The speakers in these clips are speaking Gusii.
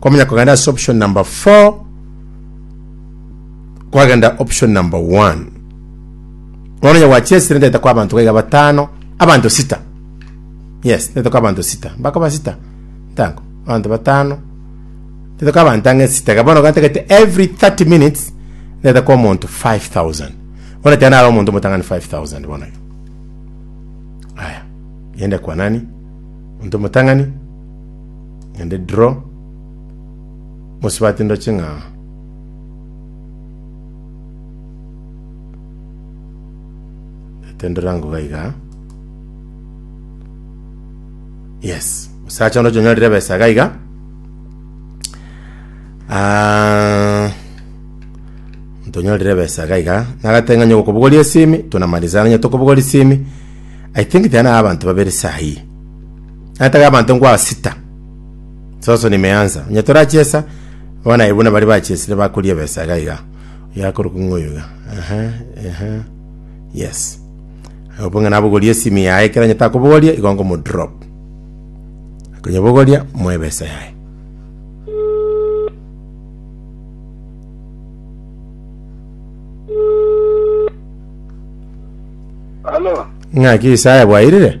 Kwamanya kogenda ase option number 4 kwagenda option number 1 bono onye gwachesire ndete kwa abanto gaiga batano abanto sita yes ndete kwa abanto sita mbakoba sita ntango abanto batano ndete kwa abanto ang'e sita iga bono gantagete every 30 minutes ndete kwa omonto 5000 bono tena ara omonto omotang'ani 5000 bono iga aya yende kwa nani omonto omotang'ani Naende dro, mosibati ndoche ng'a natenderwe ango iga iga. Yes, musacha onde chonyorire ebesa iga iga. Ah, tonyorire besa iga iga nagateng'anya okobogoria esimi tunamaliza ng'anya tokobogoria esimi i think tiga naye abanto babere sahi Nataka abanto ngwa sita. Soso nimeansa. Onye torachiesa, abana aye buna bari bachiesire bakoria ebesa iga iga. Oyo akorokwa ng'a oyo iga. Aha, aha. Yes. Agopa ng'a nabogorie esimi yaye ekero onye takobogoria igo ngomodrop. Akonyebogoria moe ebesa yaye. Halo, Ng'aki Isaya bwairire?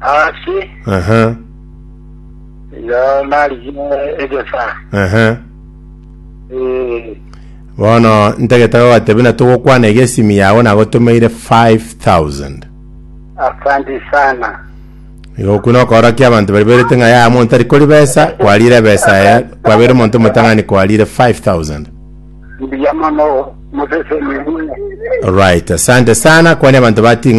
Ase Ehe, igo narigie egesaa. ehe. Eh, Bono ntagete gogatebia na togokwana iga esimi yago nagotomeire 5000. Asante sana. Igo okwo nokoorokia abanto baria bairete ng'a yaya monto tari kori besa, kwarire ebesa eye, kwabeire omonto omotang'ani kwarire 5000. Mbuya mono mosesemi buna. Right, asante sana, kwania abanto bating'a